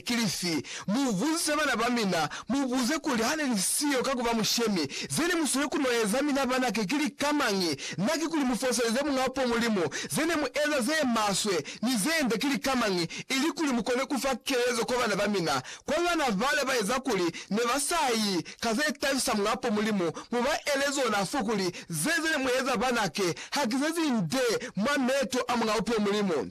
ki lifi? Mubuzise bana bamina, mubuze kuli, Hane ni siyo ka kuba mushemi, zene musweli kunoeza mina banake ki lika mañi? Na ki kuli mufoseleze Muñ'a po Mulimu, zene mueza ze maswe, ni ze nde ki lika mañi, ili kuli mukone kufa kelezo kwa bana bamina? Kwa bana bale baeza kuli ne ba sa yi ka ze tabisa Muñ'a po Mulimu, mu ba ele zona fo kuli, Ze zene mueza banake, ha ki ze zi nde mwa meto a Muñ'a po Mulimu.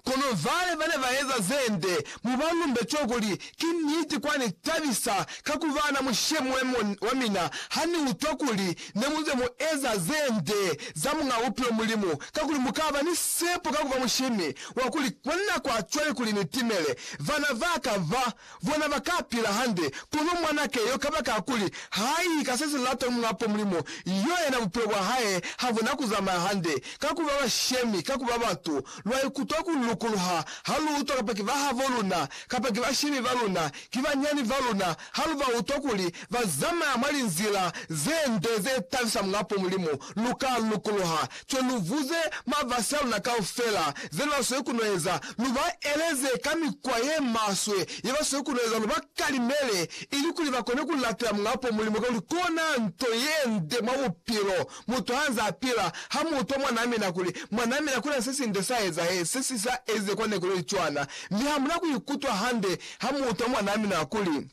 Kono vale bane baeza zende mubalumbe to kuli ki niti kwani tabisa ka kuba na mushe muemo wa mina hani utwa kuli ne muze mu eza zende za Muñ'a Bupilo Mulimu kakuli mukaba ni sepo ka kuba mushemi wa kuli kwanina kwa cwale kuli ni timele vana baka ba Bona ba ka pila hande, kono mwan'a keyo kabakakuli ha i ka se si lata Muapo Mulimu, yo yena bupilo bwa hae ha bu na ku zamaya hande. Ka ku ba bashemi, ka ku ba batu, lwa ikutwa ku lukuluha ha lu utwa kapa ki bahabo luna, kapa ki bashemi ba luna, ki banyani ba luna, ha lu ba utwa kuli ba zamaya mwa linzila ze nde ze tabisa Muapo Mulimu, lu ka lukuluha. Ki lu vuze mabasi a luna kaufela ze lu ba sweli ku no eza, lu ba eleze ka mikwa ye maswe ye ba sweli ku no eza, lu ba kalimele ilikuli ba kone ku lapela Muñ'a po Mulimu, kakuli kona nto ye nde mwa bupilo. Mutu ha nze a pila, ha mu utwa mwa namina kuli, mwa namina ku na se si nde sa ezahe, se si sa ezize kwa neku ye li cwana. Mi ha mu na ku ikutwa hande ha mu utwa mwa namina kuli,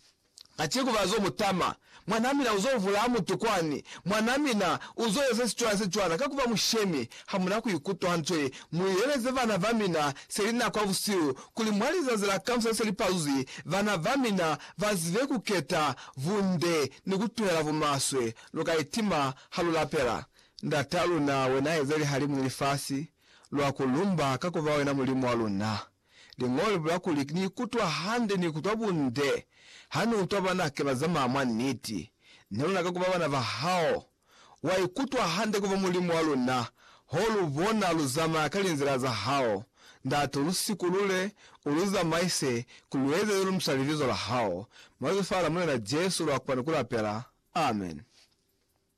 Kaciko bazo mutama. Mwanaa mina uzo vulaa mutu kwani. Mwanaa mina uzo eza sicwana secwana ka kuba mushemi. Hamuna kuikutwa hantle. Muileleze bana bamina seli nako ya busihu kuli mwa lizazi la kamusa seli pazuzi, bana bamina bazibe kuketa bunde ni kutuhela bumaswe. Luka itima ha lu lapela, Ndataa luna, Wena eza lihalimu ni lifasi, lwa ku lumba ka kuba Wena Mulimu wa luna. Liñolo li bula kuli, Ni ikutwa hande, ni ikutwa bunde ha ni utwa banake ba zamaya mwa niti. Ne luna ka ku ba bana ba hao. Wa ikutwa hande ku ba Mulimu wa luna, ho lu bona lu zamaya ka linzila za hao. Ndate, u lu sikulule, u lu zamaise, ku lu eze ze lu msha libizo la hao. Mwa Lifa la Mulena Jesu lwa kona ku lapela. Amen.